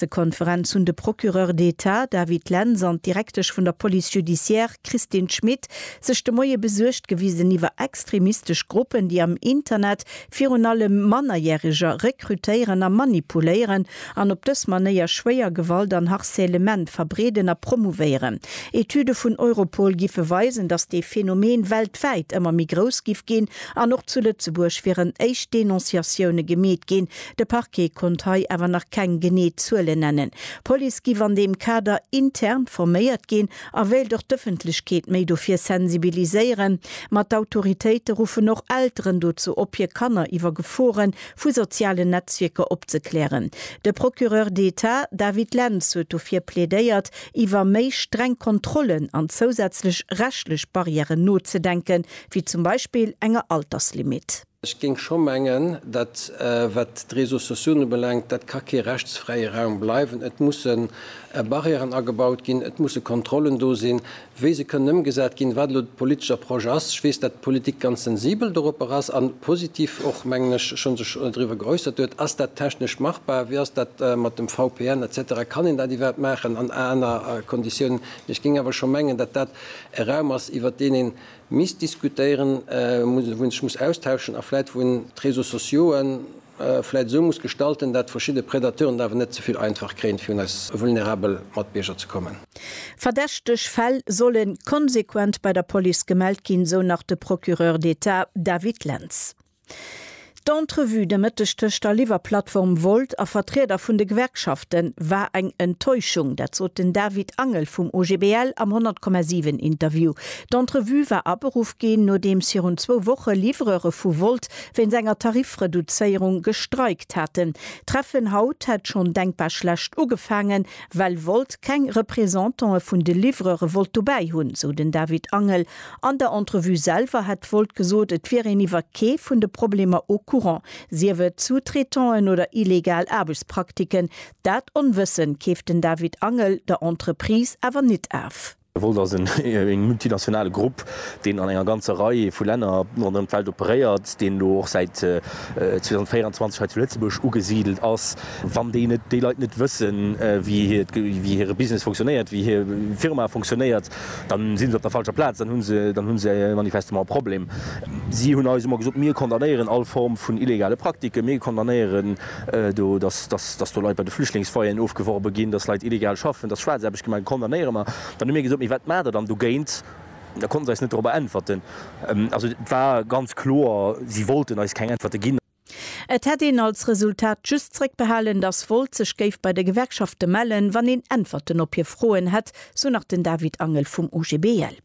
Pressekonferenz hunn de Procureur d'Etat David Lentz an d'Direktesch vun der Police judiciaire Christine Schmit sech de Moie besuergt gewisen iwwer extremistesch Gruppen, déi am Internet virun allem Mannerjäreger rekrutéieren a manipuléieren an op dës Manéier schwéier Gewalt an Harcèlement verbreeden a promouvéieren. Etüde vun Europol giffe weisen, datt dee Phänomen weltwäit ëmmer méi grouss giff ginn an och zu Lëtzebuerg wieren éischt Denonciatioune gemeet ginn, De Parquet konnt hei awer nach keng genee Zuelen nennen. D'Police giff an deem Kader intern forméiert ginn a wéilt och d'Ëffentlechkeet méi dofir sensibiliséieren. Ma d'Autoritéite ruffen och Elteren dozou op, hir Kanner iwwer Gefore vu sozialen Netzwierker opzeklären. De Procureur d'Etat David Lentz huet dofir plädéiert, iwwer méi streng Kontrollen an zousätzlech rechtlech Barrièren nozedenken, wéi zum Beispill enger Alterslimit. Ech géing scho mengen, dat wat d'Réseaux sociaux ubelaangt, dat ka kee rechtsfräie Raum bleiwen. Et musse Barrièren agebaut ginn, et musse Kontrollen do sinn, wéi se kënnen ëmgesat ginn, wat elo de politescher Projet ass. Ech weess, dat d'Politik ganz sensibel doropper ass a positiv och, mengen ech, scho sech driwwer geäussert huet. Ass dat technesch machbar? Wéi ass dat mat dem VPN et cetera? Kann een dat iwwerhaapt maachen an aner Konditiounen? Mee ech géing awer scho mengen, dat dat e Raum ass, iwwert deen ee misst diskutéieren muss, wou een sech muss austauschen a vläit wou een d'Réseaux sociaux'e vläit esou muss gestalten, dat verschidde Predateuren et awer net ze vill einfach kréien, fir un eis vulnerabel Matbierger ze kommen. Verdächteg Fäll solle konsequent bei der Police gemellt ginn, sou nach de Procureur d'État David Lentz. D'Entrevue de Mëtteg tëscht der Liwwerplattform Volt a Vertrieder vun de Gewerkschafte war eng Enttäuschung. Dat sot den David Angel vum OGBL am 100,7 Interview. D'Entrevue war aberuff ginn, nodeems virun zwou Woche Livreure vu Volt wéinst enger Tarifreduzéierung gestreikt haten. D'Treffen haut hätt schonn denkbar schlecht ugefaangen, well Volt keng Representantë vun de Livreure wollt dobäi hunn, sou den David Angel. An der Entrevue selwer hätt d'Volt gesot, et wier een iwwer kee vun de Problemer au courant, sief et Sous-traitant'en oder illegal Aarbechtspraktiken. Dat Onwëssen keeft den David Angel der Entreprise awer nit af. D'Volt ass e multinationale Grupp, deen an enger ganzer Rei vu Länner ronderëm d'Welt operéiert, deen elo och säit 2024 hei zu Lëtzebuerg ugesidelt ass. Wann déi Leit net wëssen, wéi hire Business funktionéiert, wéi hir Firma funktionéiert, Dann sinn se op der falscher Plaz, dann hunn se, dann hunn se manifestement e Problem. Si hunn eis ëmmer gesot, mir condamnéieren all Form vun illegale Praktiken, mir condamnéieren do, dass, dass, dass do Leit bei de Flüchtlingsfoyeren ofgeworbe ginn, dass Leit illegal schaffen, dass Schwaarzaarbecht gemaach gëtt, condamnéiere mer. Dann hu mir gesot, mee wat maacht Der dann dogéint? Da konnte se eis net dorobber äntwerten. Also et war ganz kloer, si wollten eis keng Äntwerte ginn. Et hätt een als Resultat just zréckbehalen, datt Volt sech géif bei de Gewerkschafte mellen, wann een Äntwerten op hir Froen hätt, sou nach den David Angel vum OGBL.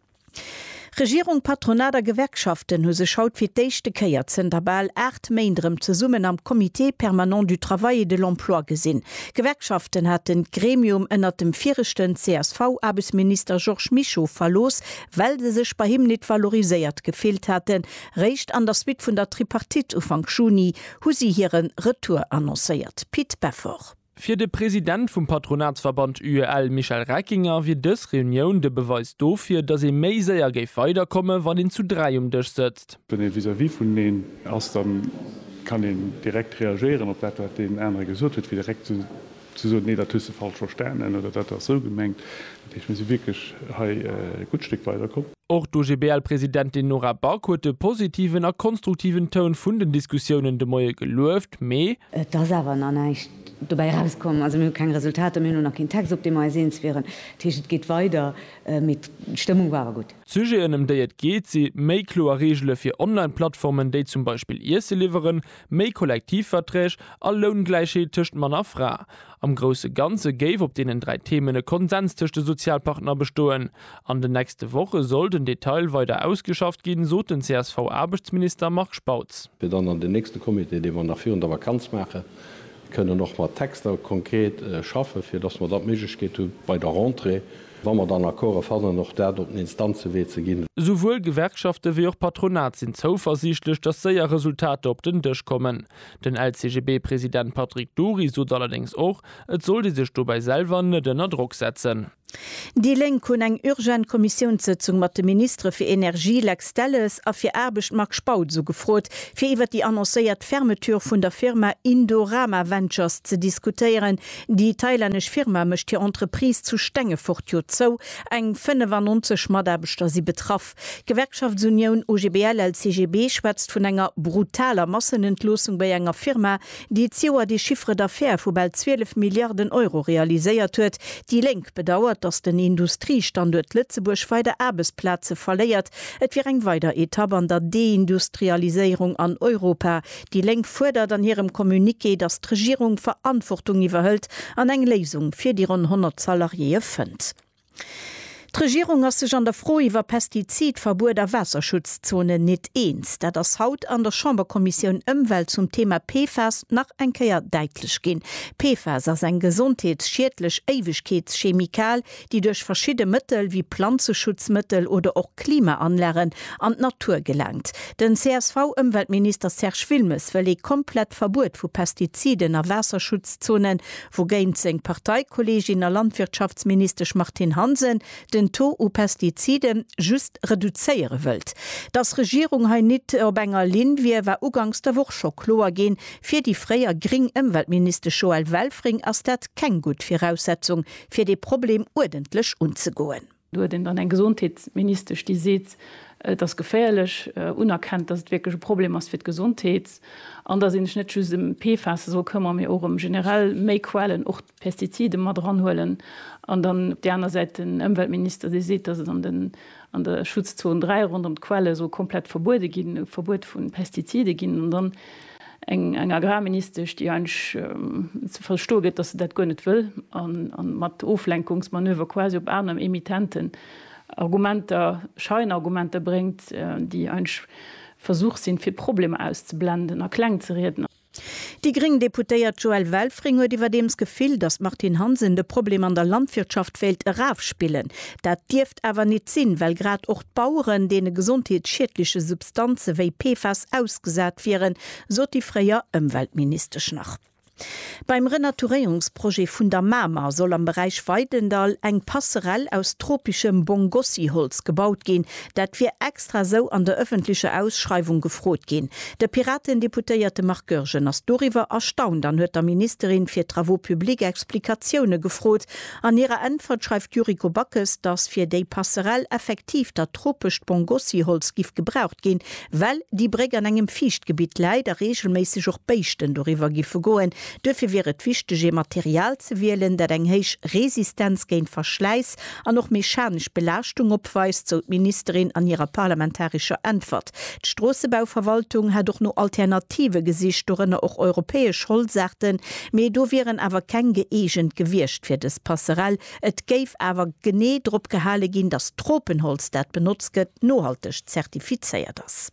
Regierung, Patronat a Gewerkschaften hu sech haut fir d'éischte Kéier zënter bal 8 Méint erëm zesummen am Comité permanent du travail et de l'emploi gesinn. D'Gewerkschaften haten d'Gremium ënnert dem viregten CSV-Aarbechtsminister Georges Mischo verlooss, well se sech bei him nit valoriséiert gefillt haten, Réischt an der Suite vun der Tripartite Ufank Juni hu si hire Retour annoncéiert. Pit Beffort. Fir de President vum Patronatsverband UEL Michel Reckinger wier dës Reunioun de Beweis dofir, datt ee méi séier géif weider komme wann een zu dräi um Dësch sëtzt. Wann ee vis-à-vis vuneneen ass, da kann een direkt reagéieren op dat wat deen anere gesot huet, fir direkt ze. Si sot, Nee, dat hues de falsch verstanen oder dat ass esou gemengt. Dat heescht, mir si wierklech hei e gutt Stéck weiderkomm. Och d'OGBL-Presidentin Nora Back huet de positiven a konstruktiven Toun vun den Diskussiounen de Moie gelueft, mee. Et ass awer nach näischt dobäi erauskomm. Also mir hu keng Resultater, mir hunn och nach keen Text, op deem mer eis eens wieren. Dat heescht, et geet weider, mee d'Stëmmung war awer gutt. D'Sujeten, ëm déi et geet, si méi kloer Reegele fir Online-Plattformen, déi zum Beispill Iesse liwweren, méi Kollektivverträg a Loungläichheet tëscht Mann a Fra. Am grousse Ganze géif op deenen dräi Themen e Konsens tëscht de Sozialpartner bestoen. An den nächste Woche soll den Detail weider ausgeschafft ginn, sot den CSV-Aarbechtsminister Marc Spautz. Fir dann an den nächste Comité, dee mer nach virun der Vakanz maachen, kënnen och mat Texter konkret schaffen, fir datt mer da d'Méiglechkeet hu bei der Rentrée, Wa mer dann Accorde fannen, och dat op den Instanzewee ze ginn. Esouwuel Gewerkschafte wéi och Patronat sinn zouversiichtlech, datt séier Resultater op den Dësch kommen. Den LCGB-President Patrick Dury sot allerdéngs och, et sollt ee sech dobäi selwer net ënner Drock setzen. Déi Lénk hunn eng urgent Kommissiounssëtzung mat de Ministere fir Energie Lex Delles a fir Aarbecht Marc Spautz ugefrot, fir iwwer déi annoncéiert Fermeture vun der Firma Indorama Ventures ze diskutéieren, Déi thailännesch Firma mécht hir Entreprise zu Stengefort jo zou, eng 95 Mataarbechter si betraff. D'Gewerkschaftsunioun OGBL-LCGB schwätzt vun enger brutaler Massenentloossung bei enger Firma, déi d'Joer de Chiffre d'affaires vu bal 12 Milliarden Euro realiséiert huet. Déi Lénk bedauert, datt den Industriestanduert Lëtzebuerg weider Aarbechtsplaze verléiert. Et wier eng weider Etapp an der Deindustrialiséierung an Europa. Déi Lénk fuerdert an hirem Communiqué, datt d'Regierung Verantwortung iwwerhëlt an eng Léisung fir déi ronn 100 Salariéeë fënnt. D'Regierung ass sech an der Fro iwwer Pestizidverbuet a Waasserschutzzonen nit eens. Dat ass haut an der Chamberkommissioun Ëmwelt zum Thema PFAS nach eng Kéier däitlech ginn. PFAS ass eng gesondheetsschiedlech Éiwegkeetschemikal, déi duerch verschidde Mëttel wéi Planzeschutzmëttel oder och Klimaanlagen an d'Natur gelangt. Den CSV-Ëmweltminister Serge Wilmes wëll ee komplett Verbuet vu Pestiziden a Waasserschutzzonen, wougéint seng Parteikolleegin a Landwirtschaftsministesch Martine Hansen den Taux u Pestizide just reduzéiere wëllt. Datt d'Regierung hei nit op enger Linn wier, war uganks der Woch scho kloer ginn. Fir déi fréier gréng Ëmweltministesch Joëlle Welfring ass dat keng gutt Viraussetzung fir dee Problem uerdentlech unzegoen. Do huet een dann eng Gesondheetsministesch, déi seet, et ass geféierlech, unerkennt, datt et wierklech e Problem ass fir d'Gesondheet an datt ee sech net just ëm d'PFASe soll këmmere mee och ëm generell méi Quellen, och d'Pestizide mat eranhuelen, an dann op där aner Säit den Ëmweltminister, dee seet, datt et an de an der Schutzzon 3 ronderëm d'Quelle soll komplett verbuede ginn, e Verbuet vu Pestizide ginn, an dann eng eng Agrarministesch, déi eigentlech ze verstoe gëtt, dass se dat guer net wëll, a mat Oflenkungsmanöver quasi op aner Emittenten Argumenter, Scheinargumenter bréngt, déi eigentlech Versuch sinn, fir d'Problemer auszeblenden a klengzerieden. Déi gréng Deputéiert Joëlle Welfring huet iwwerdeems Gefill, datt d'Martine Hansen de Problem an der Landwirtschaft wéilt erafspillen. Dat dierft awer nit sinn, well grad och d'Baueren deene gesondheetsschiedleche Substanze wéi PFAS ausgesat wieren, sot déi fréier Ëmweltministesch nach. Beim Renaturéierungsprojet vun der Mamer soll am Beräich Weidendall eng Passerell aus tropeschem Bongossi-Holz gebaut ginn. Dat wier extra esou an der ëffentlecher Ausschreiwung gefrot ginn. De Piraten-Deputéierte Marc Goergen ass doriwwer erstaunt an huet der Ministerin fir Travaux publics Explikatioune gefrot. An hirer Äntwert schreift d'Yuriko Backes, datt fir déi Passerell effektiv dat tropescht Pongossi-Holz giff gebraucht ginn, well déi Bréck an engem Fiichtgebitt läit a reegelméisseg och Béischten doriwwer giffe goen. Duerfir wier et wichteg, ee Material ze wielen, dat eng héich Resistenz géint Verschläiss an och mechanesch Belaaschtung opweist, sou d'Ministerin an hirer parlamentarescher Äntwert. D'Stroossebauverwaltung hätt och no Alternative gesicht, dorënner och europäesch Holzaarten, mee do wieren awer keng gëeegent gewiescht fir dës Passerell. Et géif awer genee drop gehale ginn, datt d'Tropenholz, dat benotzt gëtt, nohalteg zertifizéiert ass.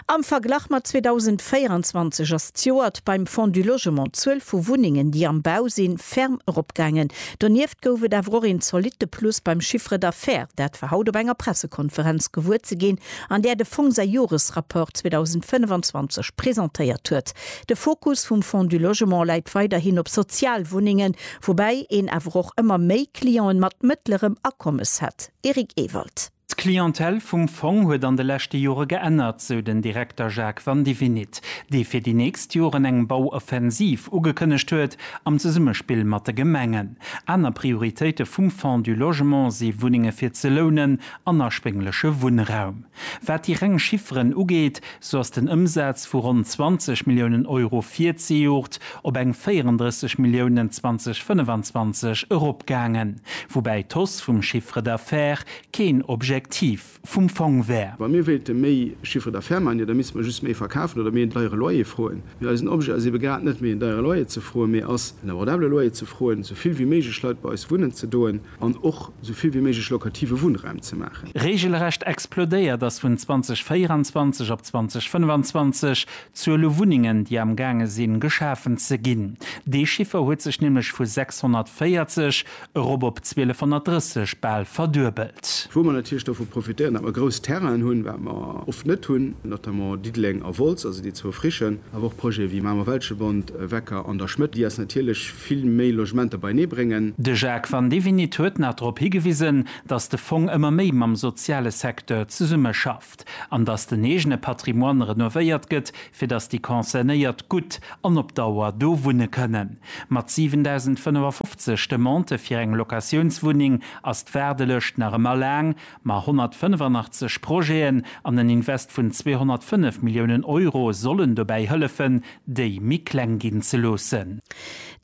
Am Verglach mat 2024 ass d'Joert beim Fonds du Logement d'Zuel vu Wunnengen, déi am Bau sinn, ferm eropgaangen. Donieft gouf et awer och een zolitte Plus beim Chiffre d'affaires. Dat war haut op enger Pressekonferenz gewuer ze ginn, an där de Fong säi Joresrapport 2025 presentéiert huet. De Fokus vum Fonds du Logement läit weiderhin op Sozialwunnengen, woubäi een awer och ëmmer méi Clienten mat mëttlerem Akommes hätt. Eric Ewald. D'Clientèle vum Fong huet an de leschte Jore geännert, sou den Direkter Jacques Vandivinit, dee fir déi nächst Joren eng Bauoffensiv ugekënnegt huet, am Zesummespill mat de Gemengen. Aner Prioritéite vum Fonds du Logement si Wunnenge fir ze lounen an erschwéngleche Wunnraum. Wat déi reng Chifferen ugeet, Sou ass den Ëmsaz vu ronn 20 Milliounen Euro virzejoert op eng 34 Milliounen 2025 eropgaangen, woubäi d'Hausse vum Chiffre d'affaires keen Objektiv vum Fong wär. Wa mir wéilte méi Chiffre d'affaires maachen, jo da misste mer just méi verkafen oder méi en deiere Loyer froen. Mee eisen Objet ass ebe grad net méi en deiere Loyer ze froen, mee ass en abordabele Loyer ze froen, sou vill wéi méiglech Leit bei eis wunnen ze doen. an och esou vill wéi méiglech lokative Wunnraum ze maachen. Reegelrecht explodéiert ass vun 2024 op 2025 d'Zuel u Wunnengen, déi am gaange sinn, geschafen ze ginn. Dee Chiffer huet sech nämlech vu 640 erop op 1230 bal verduebelt. Wou mer natierlech dovu profitéieren, datt mer grouss Terrainen hunn, wat mer oft net hunn, notamment Diddeleng a Wolz, also déi zwou frischen, awer och Projete wéi Mamer-Welschebond, Wecker an der Schmëtt, déi eis natierlech vill méi Logementer beienee bréngen. De Jacques Vandivinit huet nach drop higewisen, datt de Fong ëmmer méi mam soziale Secteur zesummeschafft an datt den eegene Patrimoine renovéiert gëtt, fir datt déi Concernéiert gutt an op Dauer do wunne kënnen. Mat 7.055 Demandë fir eng Locatiounswunneng ass d'Waardelëscht nach ëmmer laang, Ma 185 Projeten an en Invest vun 205 Milliounen Euro sollen dobäi hëllefen, déi méi kleng ginn ze loossen.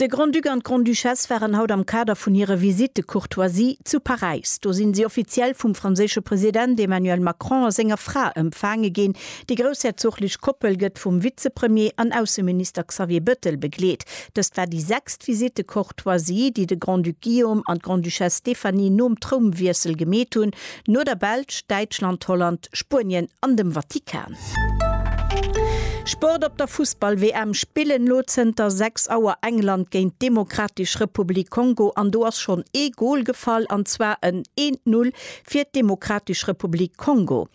De Grand-Duc an d'Grande-Duchesse waren haut am Kader vun hire Visite de courtoisie zu Paräis. Do sinn si offiziell vum franséische President Emmanuel Macron a senger Fra empfaange ginn. Déi groussherzoglich Koppel gëtt vum Vizepremier an Ausseminister Xavier Bettel begleet. Dëst war déi sechst Visite de D'Choisie, déi de Grand-Duc Guillaume an d'Grande-Duchesse Stéphanie nom Trounwiessel gemeet hunn, no der Belsch, Däitschland, Holland, Spuenien an dem Vatikan. Sport Op der Fussball-WM spillen elo zënter 6 Auer England géint d'Demokratesch Republik Kongo an do ass schonn ee Gol gefall, an zwar en 1-Null fir d'Demokratesch Republik Kongo.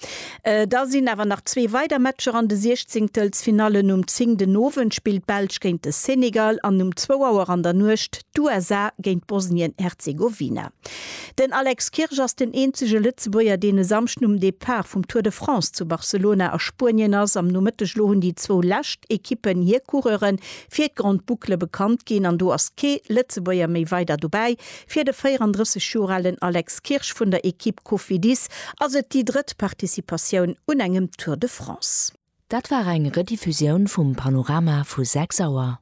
Da sinn awer nach zwee weider Matcher an de Siechzéngtelsfinallen, Um 10 den Owend spillt d'Belsch géint de Senegal an um zwou Auer an der Nuecht d'USA géint Bosnien-Herzegowina. Den Alex Kirsch ass den eenzege Lëtzebuerger, deen e Samschden um Depart vum Tour de France zu Barcelona a Spuenien ass. Am Nomëtteg elo hunn déi zwou lescht Ekippen hir Coureure fir d'Grande Boucle bekannt ginn an do ass kee Lëtzebuerger méi weider dobäi. Fir de 34 Joer alen Alex Kirsch vun der Ekipp Cofidis ass et déi drëtt Participatioun un engem Tour de France. Dat war eng Rediffusioun vum Panorama vu 6 Auer.